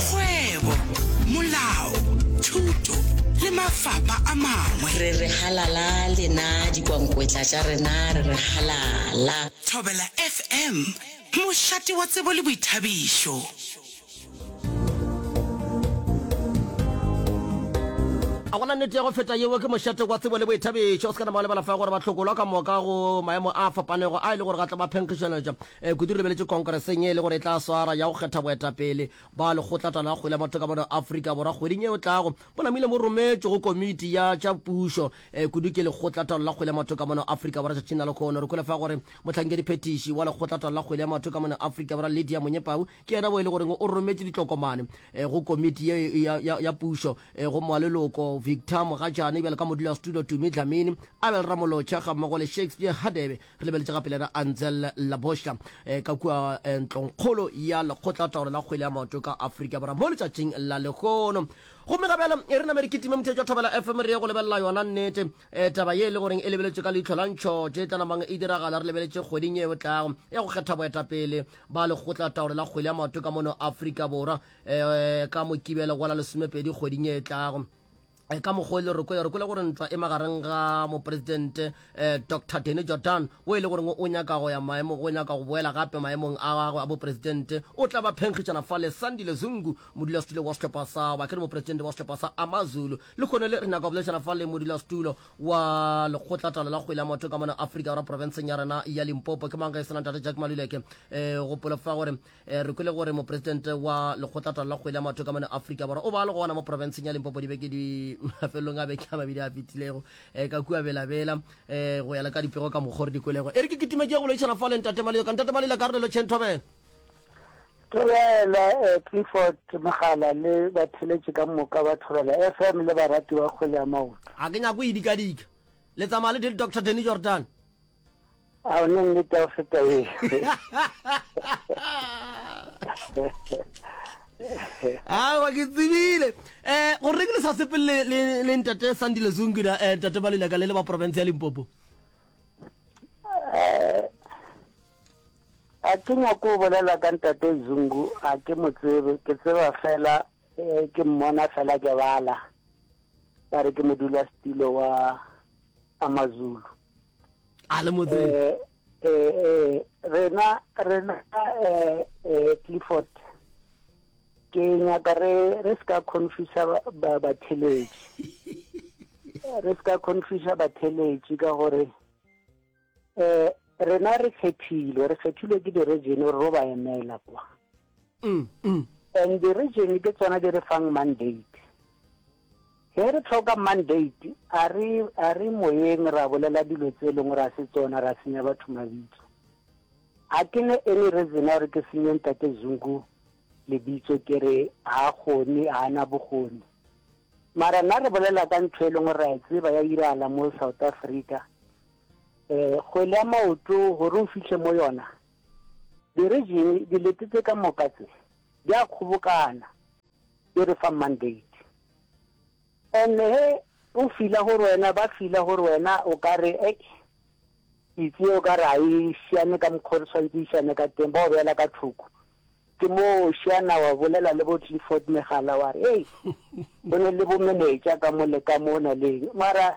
kgwebo, molao, thuto le mafapa a mangwe. Re re halala lena dikwankwetla tša rena re re halala. Thobela FM, mošate wa tsebo le boithabišo. A go na nnete ya go feta yeo? Ke mošate wa tsebo le boithabišo. O se ka nama wa lebala fa gore ba hlokolwa ka moka go maemo a fapanego a e le gore ga tla ba phenkgišeletša. Kudu re lebeletše khonkereseng ye e le gore e tla swara ya go kgetha boetapele ba Lekgotlatala la Kgwele ya Batho ka Mono Afrika Borwa kgweding e tlago. Bo namile bo rometšwe go Komiti ya tša Pušo kudu ke Lekgotlataolo la Kgwele ya Batho ka Mono Afrika Borwa tšatšing la lekhono. Re kwele fa gore mohlankedi-phethiši wa Lekgotlataolo la Kgwele ya Batho ka Mono Afrika Borwa Lydia Monyepau ke yena wo e le goreng o rometše ditlokomane go Komiti ye ya Pušo go maleloko Victor Mogatšane bjalo ka Modulasetulo Tumi Dlamini, Abel Ramolotšha gammogo le Shakespeare Hadebe. re lebeletše gape le ra anzel laboša eh, ka kua eh, ntlongkgolo ya lekgotla taolo la kgwele ya maoto ka aforika borwa mo letšatšing la lehono gomme ga bjale e re name re kitime mothetso wa thobela fm re ye go lebelela yona nnete eh, taba ye e le goreng e lebeletše ka leitlho la ntšhote e tlanamang e diragala re lebeletse kgweding ye e tlago ya go kgetha boetapele ba lekgotla taolo la kgwele ya maoto ka mono aforika borwa eh, ka mokibelo gola lesomepedi kgweding ye e tlago Eh, ka mokgwa e le rokoya rokola gore ntwa e magareng ga moporesidente um eh, dr deny jordan o e le goreng o nyaka go ya maemo o nyaka go boela gape maemong a gagwe a boporesidente o tla ba phenkgišana fa le sandile zungu modulasetulo wa setlhopha sa ba ke re moporesidente wa setlhopha sa amazulu le kgone le re nyaka go boledišana fa le modulasetulo wa lekgotlatalo la kgwele ya motho ka mona aforika ra porofenseng ya rena ya limpopo ke mang ge e sena ntate jack maluleke um eh, gopolo fa gore Eh, re kwele gore mopresidente wa lekgotlatala la kgwele ya matho ka mone afrika borwa o ba le gona mo provinceng ya limpopo dibeke di mafelelong a beke a mabedi a fetilego um ka kua belabela um eh, go yala ka dipego ka mokgore dikwelego e re ke kitimetse ya go loišana fa le ntate malelo ka ntate malelo ka re lelo chen thobela thobela eh, clifford mogala le batheletše ka moka ba thobela f m le barati ba kgwele ya maoto a ke nyako e dikadika le tsamaya le doctor denny jordan A o ne nnete go feta e. awa ke tsebile um go reng le sa sepele le ntate sandile zungida um ntate ba lelaka le le ba porofense ya limpopo eh, a ke nyako o bolela ka ntate zungu a ke mo tsebe ke tseba fela um ke mmona fela ke bala ba re ke modula setilo wa amazulu a le motseng eh, eh, eh, rena rena eh, eh, clifford ke nyaka re re se ka confusa batheletši re se ka confusa batheletši ka gore um rena re kgethilwe re kgethilwe ke di-region gore ro ba emela kwa And di region ke tsona di re fang mandate. Ge re tlhoka mandate a re a re moyeng ra bolela dilo tse leng gore a se tsona ra senya batho mabitso. A ke ne any reason ya gore ke senye ntate Zungu lebitso ke re ha gone ha na bogone. Mara na re bolela ka ntho e leng gore ra e tseba ya iragala mo South Africa. Eh kgwele ya maoto gore o fihle mo yona Dirijene di lete tše ka moka tše di a kgobokana, di re fa mandate. And he o fila gore wena, ba fila gore wena o ka re, ei, pitse ye o ka re ga e šiane ka mokgwa o re tshwanetse e šiane ka teng, ba o beela ka thoko. Ke moo o šiana wa bolela le bo Clifford Megala wa re, ei, go ne le bomenetša ka mo le ka mo o na leng. Mara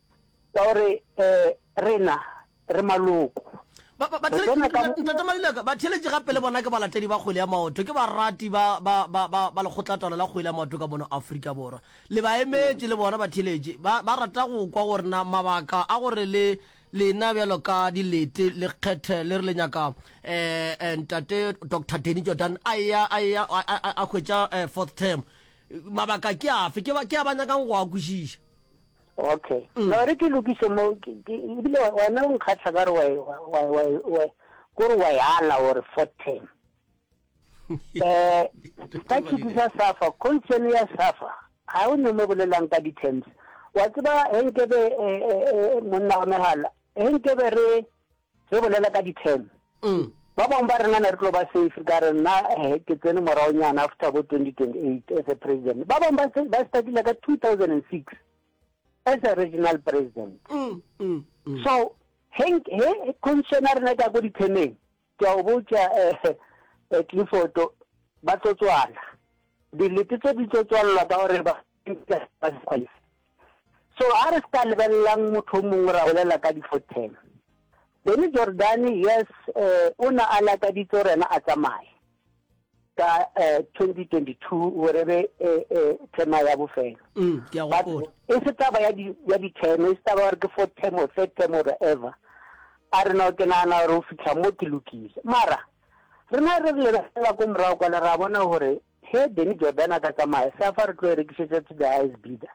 Ka gore rena re maloko. Batheeletši gape le bona ke balatedi ba kgwele ya maoto, ke barati ba lekgotlatalo la kgwele ya maoto ka mono Afrika Borwa. Le baemetši le bona batheeletši ba rata go kwa gore na mabaka a gore le lena bjalo ka dilete le kgethe le re le nyaka Ntate Doctor Danny Jordaan a eya a hwetša fourth term, mabaka ke afe, ke a ba nyakang go a kwešiša. Okay. Mm. No re ke lokiso mo ebile wena o nkgatlha ka re wa wa wa wa go re wa yala or for ten. Eh ka ke disa safa concern ya safa. Ha o ne mo bolelang ka di terms. Wa tseba he nkebe eh, eh, eh, monna wa mehala. He nkebe re Re bolela ka di-ten. Ba bangwe ba rena ne re tlo ba safe ka re nna eh, ke tsene moraonyana after bo 2028 as a president. Ba bangwe ba se- ba startile ka 2006 as a regional president. So he nk- he constitution ya rena e ka ko di-teneng, ke a o botša eh, eh, Clifford, ba tlo tswala. Dilete tse di tlo tswalelwa ka gore ba So a re ska lebelelang motho o mongwe ra bolela ka difothela. Benny Jordaan yes eh, o na a lakaditse gore yena a tsamaye ka eh, 2022 gore be eh, eh, thema ya bofelo mm, but e se taba ya ditheme e se taba gore ke four term or third term or ever a re no ke nagana gore o fitlha mo ke lokile mara rena re re lebelela ko morago kwana ra bona gore He Danny Jordaan a ka tsamaya sa fa re tlo e rekišetša to the highest bidder.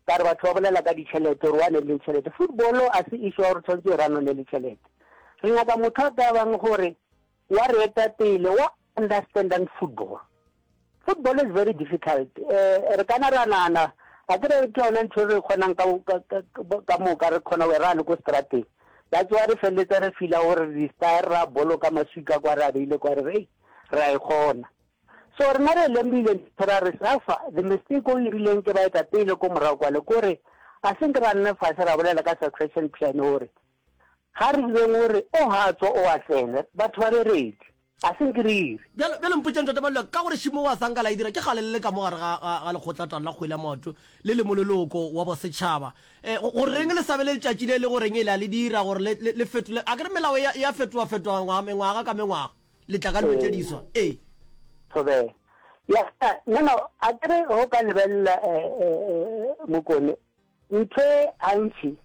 Ka re batho ba bolela ka ditšhelete gore o ane le tšhelete. Football a se issue ya gore tshwanetse e ranwe ne le tšhelete. Re nyaka motho a ka bang gore wa re eta pele wa understandang football. Football is very difficult. Eh, re kana ra nana a ke re ke yona ntho re kgonang ka ka moka re kgona go ra le ko strateng. That's why re felletsa re fila gore re style ra boloka maswika kwa re a beile kwa re re ra e kgona. So rena re lemohile dintho ra re suffer the mistake o irileng ke baetapele ko morago kwale kore a se nke ra nna fase ra bolela ka succession plan gore ga re direng gore o ga tswa o a tsene batho ba be ready a se nke re ire Bjalo, bjale mpotšeng Ntate Maluleka, ka gore Shimo wa Sanka la e dira, ke kgale le le ka mo gare ga, ga, ga lekgotlatan la kgwele ya maoto le le mololoko wa bosetšhaba. Eh, go, go reng le sa be le letšatši le le go reng e le a le dira gore le, le, le fetole, akere melao e a, e a fetoafetoa ngwaga, mengwaga ka mengwaga? le tla ka dilo tše diswa ee tobe ya no no a kere go ka lebelela eh, eh, eh, mokone ntho gantši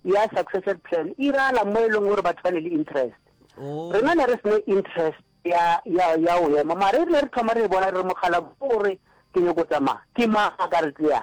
ya succession plan e iragala mo e leng gore batho ba ne le interest oh. rena ne re sene interest ya ya ya o ema mare re ne re thoma re e bona re mogala gore ke nyoko tsamaya ke maaka re tleya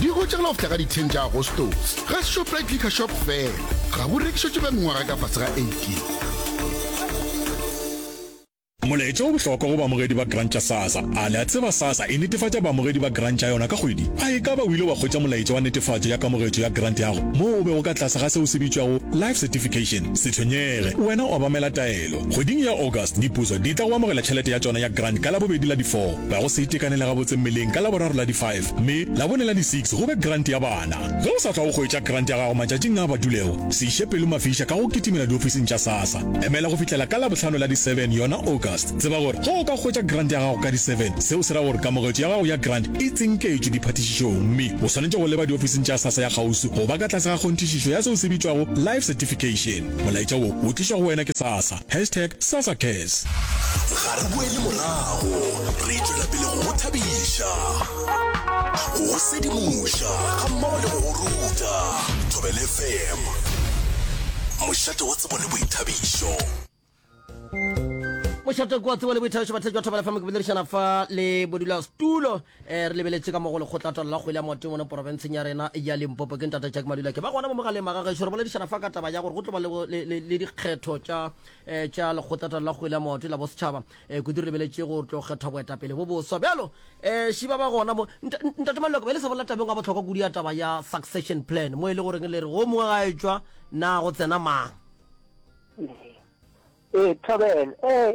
di gotše go lofta ka di 10 tša agostos ga shoprite liquor shop fela ga go rekišetše ba mengwaga ka fase ga 18 Molaetša o bohlokwa go baamogedi ba grant tša SASSA. A le a tseba SASSA e netefatša baamogedi ba grant tša yona ka kgwedi? A e ka ba o ile wa hwetša molaetša wa netefatšo ya kamogetšo ya grant ya gago moo o bego ka tlase ga seo se bitšwago Life Certification? Se tshwenyege, wena obamela taelo. Kgweding ya August, dipuso di tla go amogela tšhelete ya tšona ya grant ka Labobedi la di 4. Ga go se itekanele gabotse mmeleng ka Laboraro la di 5. Mme Labone la di six go be grant ya bana. Ge o sa tla o hwetša grant ya gago matšatšing a a badulego, se iše pelo mafiša ka go kitimela diofising tša SASSA. Emela go fihlela ka Labohlano la di seven, yona August. Tseba gore ge o ka hwetša grant ya gago ka di seven, seo se ra gore kamogetšo ya gago ya grant e tsinketšwe diphathišišong mme o swanetše go leba diofising tša SASSA ya kgauswi go ba ka tlase ga kgonthišišo ya seo se bitšwago Life Certification. Molaetša wo o tlišwa go wena ke SASSA. Hashtag Sassa Cares. Ga re boele morago, re tšwela pele go go thabiša, go go sedimoša gammogo le go go ruta. Thobela FM, mošate wa tsebo le boithabišo. Mošate wa tsebo le boithabišo, batheletši ba Thobela FM ke boledišana fa le modulasetulo E re lebeletše ka mo go lekgotlatwalo la kgwele ya maoto mono porofenseng ya rena ya Limpopo. Ke ntate Jack Madula ke ba gona mo mogaleng maga gešo. Re boledišana fa ka taba ya gore go tlo ba le, le, le, le dikgetho tša, eh, tša lekgotlatwalo la kgwele ya maoto la bosetšhaba. Eh, kudu re lebeletse go tlo kgethwa boetapele bo boswa. Bjalo, eh, šiba ba gona mo. Nta, ntate Madula ke be le sa bolela tabeng ya bohlokwa kudu ya taba ya succession plan mo e le goreng le re go mongwe ga etšwa na go tsena mang. Ee, ee, Thobela, ee,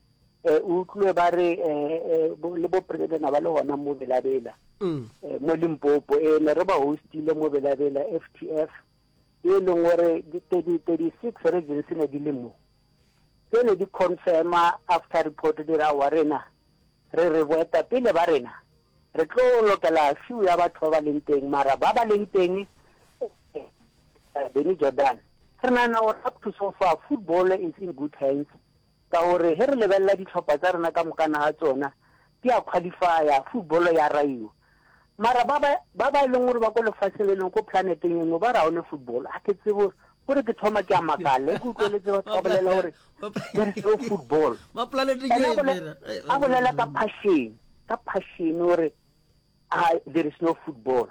Eh, o utlwe ba re eh, eh, bo- le bo president ba le gona mo belabela Mm. eh, mo limpopo e ne re ba hostile mo belabela ftf e leng gore di- 30 36 regions ne di le mo tse ne di confirma after report di ra wa rena re re boeta pele ba rena re tlo lokela few ya batho ba ba leng teng mara ba ba leng teng eh, eh, beny jordan re nagana gore up to so far football is in good hands Ka gore ge re lebelela dihlopha tša rena ka mokana ga tsona di a khwalifaya, futbolo ya raiwa. Mara ba ba, ba ba e leng gore ba ko lefaseng le lengwe, ko planeteng e nngwe, ba re ga one futbolo. A ke tsebe gore, kore ke thoma ke a makala ge ke utlweletse batho ba bolela gore there is no football. Ba planeteng Ene a e bole- mena. Ai, a bolela ka phashene, ka phashene o re, a there is no football.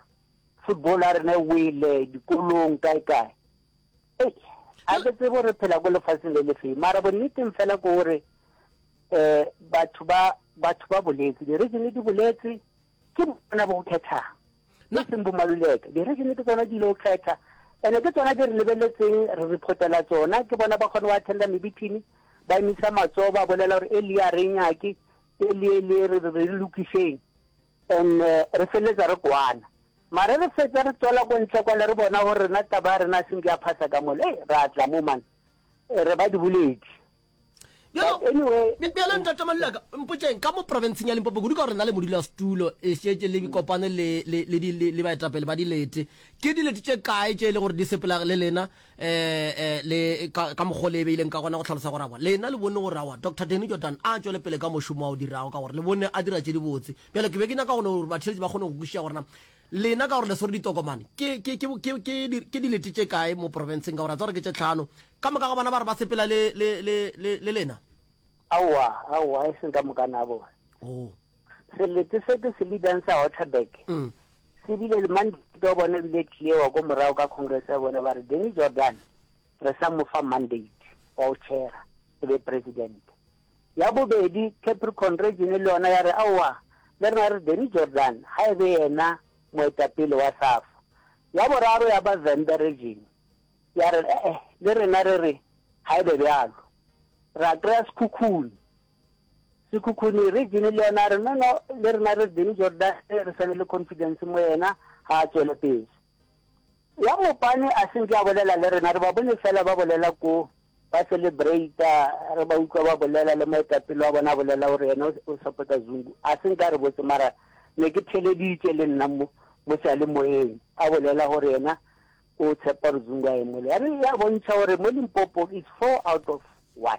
Football ya rena e wele, dikolong, kae-kae. a ke tsebo gore phela ko lefatsheng le lefeng mara bonneteng fela ko gore um batho ba batho ba boletse di-regione di boletse ke bona bo kgethang e seng bomaluleke di-regione ke tsona di ile go kgetha and-e ke tsona di re lebeletseng re reportela tsona ke bona ba kgone go attenda mebithini ba emisa matsoho ba bolela gore e le ya renyake e le e le re re lokiseng And re feletsa re kwana. Mara re fetsa re tswela ko ntle kwale re bona gore rena taba ya rena seng ya phasa ka mole. Hey, ra tla mo man. Re ba diboledi. Bjalo, But anyway, bjalo ntate Maluleka, mpotšeng, ka mo provinceng ya Limpopo, kudu ka gore na le modulasetulo e šetše le bikopane le, le, le, di, le, le baetapele ba dilete, ke dilete tše kae tše e le gore di sepela le lena, um le ka mokgwa le e beileng ka gona go tlhalosa gore awa lena le bone gore awa dr deny jordan a tšwele pele ka mošomo wa o dirago ka gore le bone a dira tše dibotse bjale ke be ke nyaka gone gore batheletši ba kgone go kwešiša gorena lena ka gore le swere ditokomane ke dilete tše kae mo porofenseng ka gore a tsa gore ke tše tlhano ka moka ga bona ba re ba sepela le lena aowa aowa e seng ka moka na bona oh. Selete se ke se leadang sa Waterberg se bile le mandate wa bona bile clear ko morago ka congress ya bona ba re Danny Jordan re sa mo fa mandate wa o chaira e be president. Ya bobedi Capricorn region le yona ya re aowa le rena re Danny Jordan ga e be yena moetapele wa SAFA. Ya boraro ya ba Vhembe region ya re eh-eh le rena re re ga e be bjalo. Ra kry-a sekhukhune. Sekhukhuni, Re Jenny le yena, re no no, le rena re Benny Jordaan, re sa be le confidence mo yena, ga a tšwele pele. Ya Mopane a se nke a bolela le rena, re ba bone fela ba bolela ko, ba celebrata, re ba utlwa ba bolela, le moetapele wa bona a bolela gore yena o support-a Zungu. A se nke a re botse, mara ne ke theleditše le nna mo, mo sealemoyeng, a bolela gore yena o tshepa gore Zungu a emele. Ya re ya bontšha gore mo Limpopo is four out of one.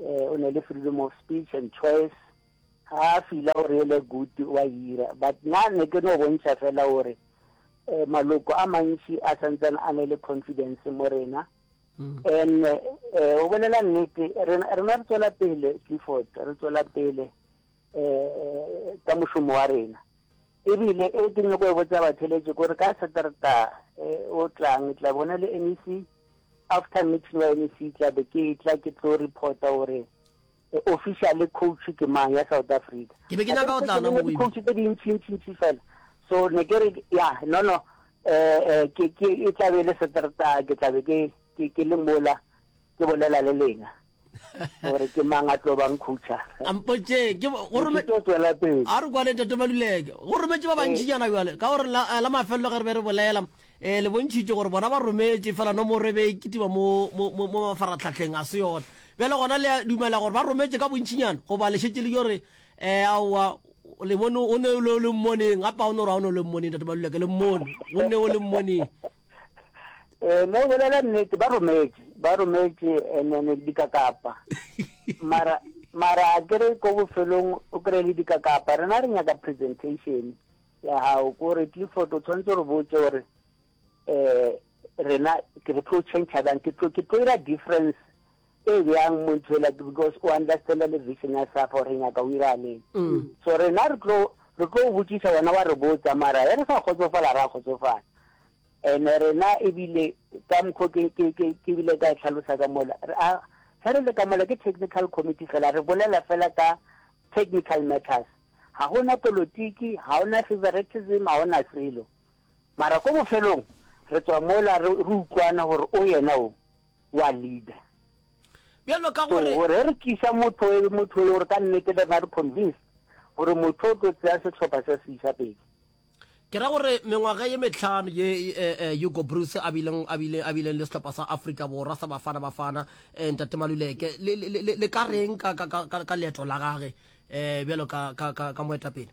eh, o ne le freedom of speech and choice ga a fila gore ele good wa ira but na ne ke no bontšha fela gore um maloko a mantši a santsane a ne le confidence mo rena mm. and um o bolela nnete rena re tswela pele clifford re tswela pele um ka mošomo wa rena. E bile e ke nyoko go botsa batheletši kore ka Saterta um o tlang ke tla bona le MEC, after meeting wa MEC ke tla be ke tla ke tlo reporta gore officially coach ke mang ya South Africa. Ke be ke nyaka go tla na mo coach tse di ntši ntši ntši fela. So ne ke re ya no no eh ke ke e tla be le seterta ke tla be ke ke ke le mola ke bolela le lena gore ke mang a tlo bang khutšha ampotše ke go rome tlo tswela pele a re kwale tate maluleke go rometše ba bantši jana eh. bjale ka gore la eh, la mafelelo ge re be re bolela eh le bontšhitše gore bona ba rometše fela no mo re be e kitima mo mo mo mafaratlhatlheng a se yona bjale gona le dumela gore ba rometše ka bontšinyana goba le šetse le yo re eh aowa le bone o ne o le mmoneng gape ga o ne gore ga o ne o le mmoneng tate maluleke le mmone o ne o le mmoneng Eh, no bolela nnete ba rometše ba rometše enene eh, dikakapa mara mara a kere ko bofelong o kry le dikakapa rena re nyaka presentation ya gago kore clifford o tshwanetse re botse gore um rena ke re tlo change jang ke tlo ira difference E bjang mo ithwela ke because o understanda le vision ya safa gore nyaka o iraleng so rena re tlo re tlo o botsisa wena wa re botsa mara e re sa kgotsofala ra kgotsofala and rena ebile ka mokgo ke ke ke ke bile ka e tlhalosa ka mola a ge re le ka mola ke technical committee fela re bolela fela ka technical matters ga gona politiki ga ona favoritism ga ona selo mara ko bofelong re tswa mola re utlwana gore o yena o wa leader bjalo ka gore so re re tlisa motho e motho e gore ka nnete ba re convince gore motho o tlo tsaya setlhopha sa se isa pele ke ra gore mengwaga ye metlhano ye eh, eh, hugo bruce a bileng le setlhopha sa africa borwa sa bafana bafana eh, ntate maluleke le ka reng ka leeto la gage um bjalo ka moetapele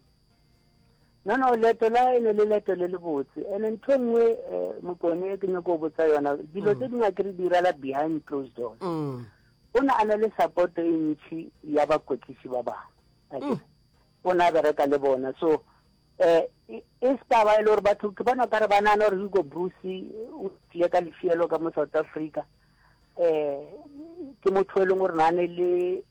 No, no, leeto la e ne le leeto le lebotse. And then ntho nngwe eh, mokone e ke nyoko botsa yona, dilo tse mm. dingwe ke re di irala behind closed doors. Mm. O ne a na le support e ntšhi ya bakwetlisi ba bangwe. Mm. O ne a bereka le bona. So, eh, e, e se taba e le gore batho ke bona kare ba nana gore Hugo Bruce o tlile ka lefielo ka mo South Africa. Eh, ke motho e leng gore na ne le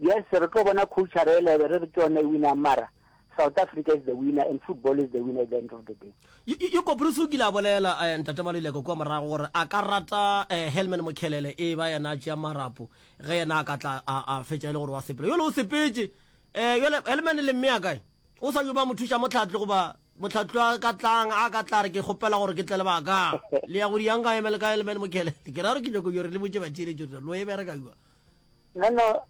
Yes re tlo bona culture e lebe re re ke yona e winang mara South Africa is the winner and football is the winner at the end of the day. Yoko Bruce o kile a bolela eh, Ntate Maluleka kua morago gore a ka rata eh, Helman Mokhelele e ba yena a tšea marapo ge yena a ka tla a, a fetša e le gore wa sepela yole o sepetše eh, yole Helman le mme a kae o sa yo ba mothuša motlhatlo goba motlhatlo a ka tlang a ka tla re ke kgopela gore ke tle le baka le ya go diyanka emele ka Helman Mokhelele ke ra gore ke nyoko yore le botše batšeletšo lo e bereka yua Nono,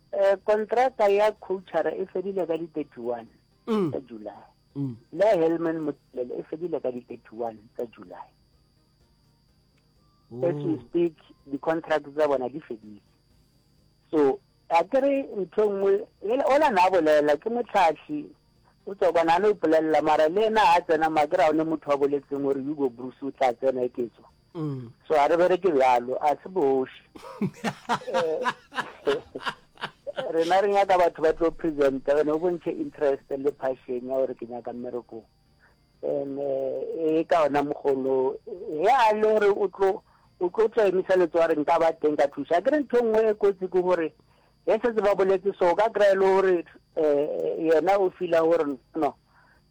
kontraka ya khouchara e fedile ka di 31 tsa July. Le ya Helman Mothelele e fedile ka di 31 tsa July. Oh. As we speak, di-contract tsa bona di fedile. So, a ke re ntho nngwe, ola na bolela, ke motlhatlhi, o tswa kwana a no ipolelela, mara le ena a tsena, ma ke ra o ne motho wa boletseng gore Hugo Bruce o tla tsena e ke tswa. mm. so a re bereke bjalo a se boši rena re nyaka batho ba tlo presenta gone o bontšhe interest le passion ya gore ke nyaka mmerekong and eh, e ka ona mogolo ge a le gore o tlo o tlo tla emisa letso a re nka ba teng ka thusa ke re ntho nngwe e kotsi ke gore ge setse ba boletse so ka kry-e le gore um yena o fila gore no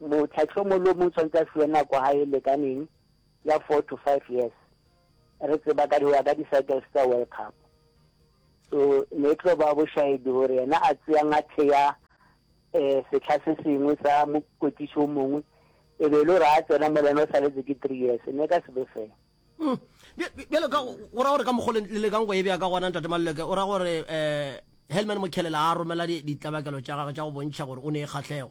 Mohlahlomolomong o swanetše a fiwe nako ha e lekaneng ya four to five years. Re tseba ka ho ya ka di-cycles tsa World Cup. So ne e tlo ba bošaedi gore yena a tseyang a theya um sehla se sengwe sa mokwetlisi o mongwe e be e le gore a tsena mo le yena o saletse ke three years ne ka se be fair. Mm. Bjale ka go ra gore ka mokgwa le lekang go e bea ka gona ntate Maluleke o ra gore um Helman Mokhelela a romela ditlabakelo tša gagwe tša go bontšha gore o ne e kgahlego.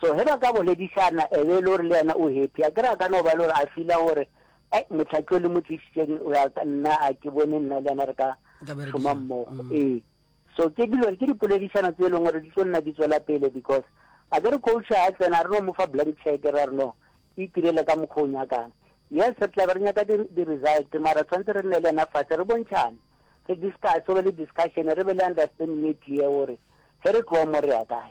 So ge ba ka boledišana e be e le gore le yena o happy, a ke re a ka no ba e le gore a feela gore ai motlhaki o le mo tlišitšeng o ya nna a ke bone nna le yena re ka šoma mmogo mm. ee so ke dilo ke dipoledišano tse e leng gore di tlo nna di tswela pele because a ke re coach a tsena re no mo fa blank check ra re no e tirele ka mokgwa o nyakang yes re tla be re nyaka di-result mara tshwanetse re nne le ena fatshe re bontšhane re discuss o be le discussion re be le understanding e clear gore ge re tloa mo re ya kae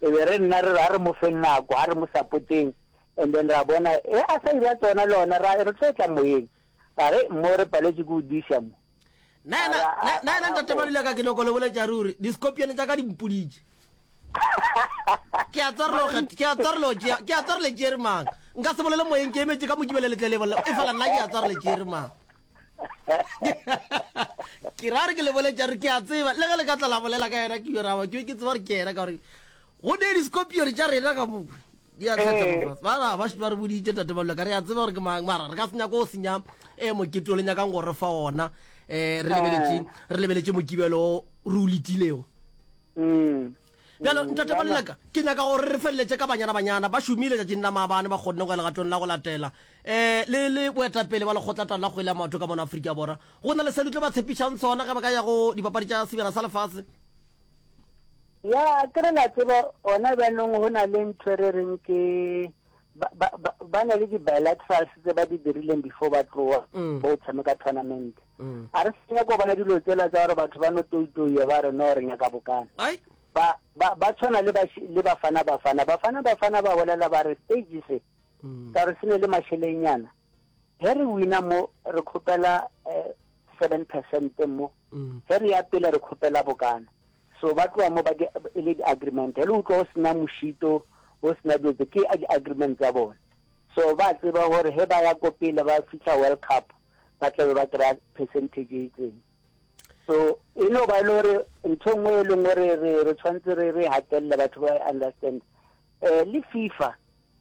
E be re nna re re a re mo feng nako, a re mo sapoteng, and then ra bona ge a sa ira tsona le ona ra re tlo etla moyeng, ra re mo re paletše ke go diša mo. Nna yena, Ara, a, nna yena a, ntate mo. Malule a ka ke nyoko le boletša ruri, di-scorpion tša ka di mpoditše. Ke a tswa re lo kget, ke a tswa re lo tšea, ke a tswa re le tšere mang. Nka se bolele moyeng ke emetše ka mo ke bele letlelebo leo, efela nna ke a tswa re le tšere mang. ke ra gore ke leboletša gore ke a tseba le ge le ka tla la bolela ka yena ke yoraba ke ke tseba gore ke yena ka gore go ne discopione tša rena ka mo di a tlhatsa ba ba shwa re boditše tate ba ka re a tseba gore ke mang mara re ka senya go senya e mokete o le nyakang gore fa ona eh re lebeletše re lebeletše mokibelo o re o letilego mm. Bjalo, Ntate Moleleka, ke nyaka gore re feleletše ka banyana-banyana ba šomile tšatšing la maabane, ba kgonne go ya legatong la go latela, um le, le boetapele bja Lekgotlatau la Kgwele ya Maoto ka mona Afrika Borwa. Go na le se le tlo ba tshepišang sona ge ba ka ya go Dipapadi tša Sebjana sa Lefase? Ya, ke re la tseba, gona bjanong go na le ntho e re reng ke, ba, ba, ba, ba na le di-bilaterals tse ba di dirileng before ba tloa, bo tshameka tournament. Ga re sa nyako bona dilo tsela tsa gore batho ba no toitoiye ba re no re nyaka bokana. Ba, ba, ba tshwana le, le bafana bafana. Bafana bafana ba bolela ba re stage se, mm. ka re se ne le mashelenyana. Ge re wina mo, re khopela eh, seven percent mo. Mm. Ge re ya pele re khopela bokana. So ba tloa mo ba di, e le di-agreement. He le utlwa o sena moshito, o sena dilo tse, ke di-agreement tsa bone. So ba tseba gore he ba ya ko pele ba fitlha World Cup, ba tlabe ba kry-a percentage e itseng so e no ba e le gore ntho nngwe e leng gore re tshwanetse re re gatelele batho ba understand um le fifa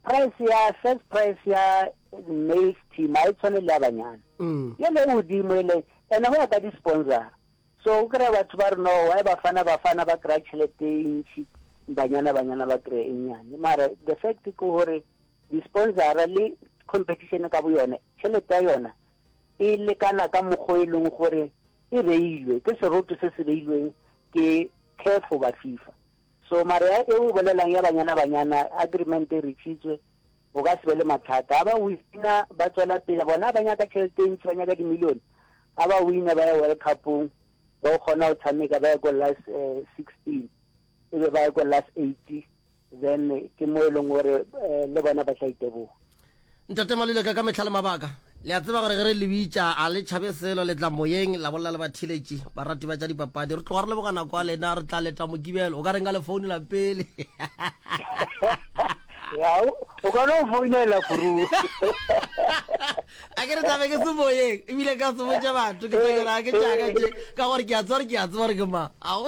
price ya first price ya maize team a e tshwane le ya banyana mm. ye le godimo e leng ene go ya ka di-sponsor so o kry-a batho ba re no wy bafana bafana ba kry-a tšhelete e ntšhi banyana banyana ba kry-e nnyane mara the fact ke gore Disponsara le competition ka boyone tšhelete ya yona e lekana ka mokgwa e leng gore e beilwe ke seroto se se beilweng ke CAF goba FIFA. So mare ya e o bolelang ya banyana banyana agreement e reachitswe o ka se be le mathata. Ha ba wina ba tswela pele bona ba nyaka tšhelete e ntši ba nyaka dimilione. Ha ba wina ba ya World Cup-ong ba o kgona go tshameka ba ye ko last sixteen e be ba ye ko last eighty. then ke mo e leng gore eh, le bona ba tla iteboga ntate maluleka ka metlha le mabaka le a tseba gore ge re le bitša a le tšhabe selo le tla moyeng la bolela le batheletši barati ba tša dipapadi re tloga re leboga nako ya lena re tla leta mokibelo o ka reng ka le founela pele yao o kgona go founela furu a ke re tlabe ke se moyeng ebile ka se botse batho ke tsakera ke tšaka tše ka gore ke a tseba gore ke a tseba gore ke ma a o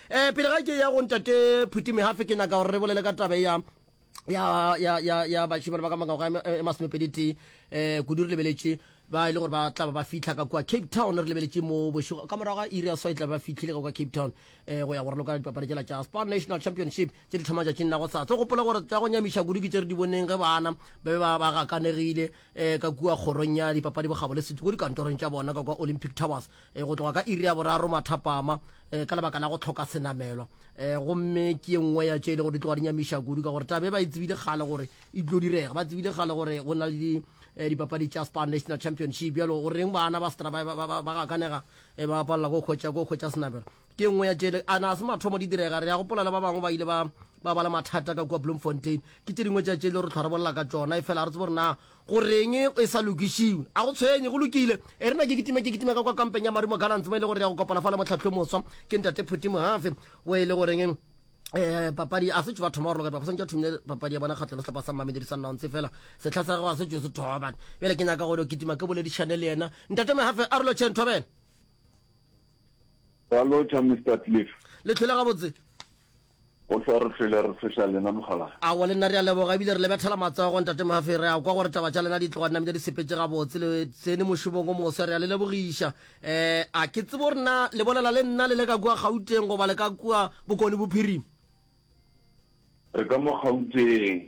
Eh, pele ga ke ya go ntate Phuti Mehafe, ke nyaka gore re bolele ka tabe ya ya ya ya ya bashimane ba ka mangwaga e e masomepediti um eh, kudu re lebeletše ba e le gore ba tla ba fitlha ka kua cape town re lebeletše mo bošego ka morago ga iri ya swai tla ba fitlhile ka kua cape town um go ya gore loka dipapadi tsela tša sport national championship tse di thoma tšatšing la go sa tse gopola gore tsa go nyamiša kudu ke tse re di boneng ge bana ba be ba gakanegile um eh, ka kua kgorong ya dipapadi bogabo le setiko dikantorong tša bona ka kua olympic towers e, go tloga ka iri ya boraro mathapama e, ka lebaka la go tlhoka senamelwa e, gomme ke ye nngwe ya tše e le gore di tloga di nyamiša kudu ka gore tabe ba e tsebile kgale gore e tlo direga ba tsebile kgale gore go na le e, dipapadi tša spar national championship bjalo o reng bana ba stra ba gakanega e, ba palela ko kgwetša ko kgwetša senamelo ke nngwe ya tšele a na se mathomo di direga re ya gopola le ba bangwe ba ile ba ba bala mathata ka kua bloemfontein ke tše dingwe tša tšele re tlhwa re bolela ka tsona e fela re tsebo re na Go reng e sa lokišiwe? A go tshwenye, go lokile. E re na ke kitime, ke kitime ka kwa kampeng ya Marumo Gallants mo e le gore re ya go kopana fa le mohlapi yo moswa ke Ntate Phuti Mohafe wo e le goreng um papadi a se tšo ba thoma go roloka ba santša thomile papadi ya bona kgatlo le sehlapa sa mmamediri sa nnontse fela setlha sa gago a se tšo se thoba bjale ke nyaka gore kitima ke boledišane le yena ntate mehafe a rolo chen thobela Ralocha, Mr. Cliff. Le tlhole gabotse. Go hlwa re hlwele re tshweša lena, Mokgalabje. Aowa, le nna re a leboga, ebile re le bethela matsogo, Ntate Murphy. Re a kwa gore taba tša lena di tloga dinamile di sepetše gabotse. Le tsene mošomong o moswa, re a le lebogiša. Eh, a ke tsebe gore na le bolela le nna le le ka kua Gauteng goba le ka kua Bokone Bophirima? Re ka mo Gauteng.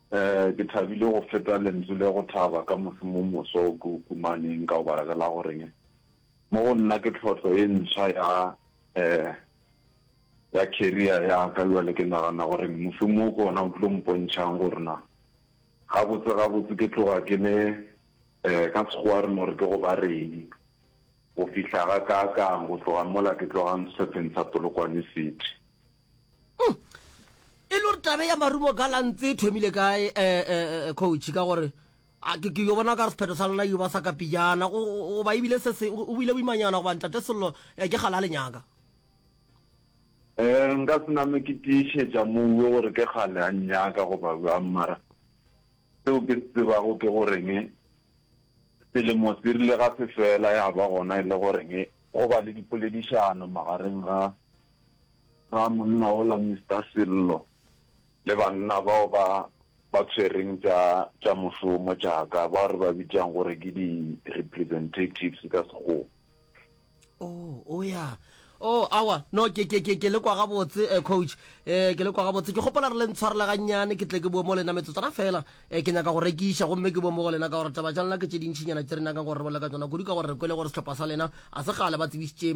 Ee, ke thabile go feta lentswe le go thaba ka mošomo o moswa o ke o kumaneng. Ka o baregela go reng? Mo go nna ke tlhotlo e ntshwa ya ee ya career ya ka. Bjale ke nagana go reng mošomo o ke ona o tlo mpontšhang gore na gabotse gabotse ke tloga ke le ee ka sekgowa re no re ke go ba reng go fihla ga ka kang go tloga mola ke tlogang sehlopeng sa Polokwane City. Hmm. e le gore tabe ya marumo ka lantse e thomile kae um eh, eh, eh, coach ka gore ke yo bona ka re sephetho sa lona yo ba sa ka pijana goba ebile se se o bile boimanyana goba ntate sello ke gala le nyaka um nka sename ke tiišetša moue gore ke gale a nyaka goba bjang mara seo ke se tsebago ke goreng selemo se rile ga se fela ya ba gona e le goreng go ba le dipoledišano magareng ga Ga monna ola Mister Sello le banna bao ba ba tshwereng tša tša mošomo tša ka bao re ba bitšang gore ke di representatives ka sekgowa. Oh, o ya. Oh, awa, no, ke, ke, ke, ke le kwa gabotse, eh, coach. Eh, ke le kwa gabotse. Ke gopola re le ntshwarela gannyane, ke tle ke bue mo lena metsotswana fela. Eh, ke nyaka go rekiša, gomme ke bue mo go lena ka gore taba tša lena ke tše dintšhinyana tše re nyakang gore re bolela ka tšona, kudu ka gore re kwele gore sehlopha sa lena a se gale ba tsebišitše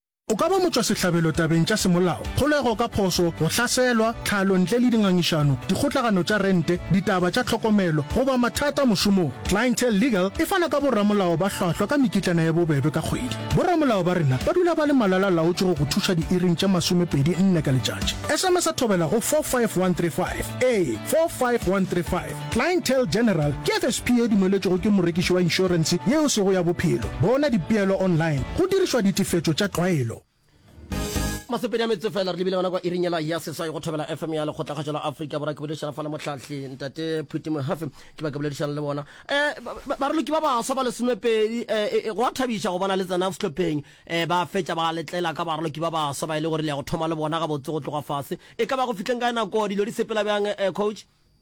O ka ba motšwasehlabelo tabeng tša semolao, kgolego ka phošo, go hlaselwa, tlhalo ntle le dingangišano, dikgotlagano tša rente, ditaba tša tlhokomelo, goba mathata mošomong. Clientele Legal e fana ka boramolao ba hlwahlwa ka mekitlana ya bobebe ka kgwedi. Boramolao ba rena ba dula ba le malala-laotše go go thuša diiring tše masomepedi nne ka letšatši. SMSa thobela go 45135. Ee, 45135. Clientele General ke FSP e dumeletšwego ke morekiši wa inšorense yeo sego ya bophelo. Bona dipeelo online go dirišwa ditefetšo tša tlwaelo. Masepedi a metse fela re lebile gona kwa iring yela ya seswai go thobela FM ya lekgotlakgašo la Afrika Borwa. Ke boledišana fa le mohlahli Ntate Phuti Mohafe, ke ba ke boledišana le bona. Um baraloki ba baswa ba lesomepedi, um go a thabiša go bona le tsena sehlopheng, um ba fetša ba letlela ka baraloki ba baswa ba e le gore le ya go thoma le bona gabotse go tloga fase. E ka ba go fihleng kae nako dilo di sepela bjang, um Coach?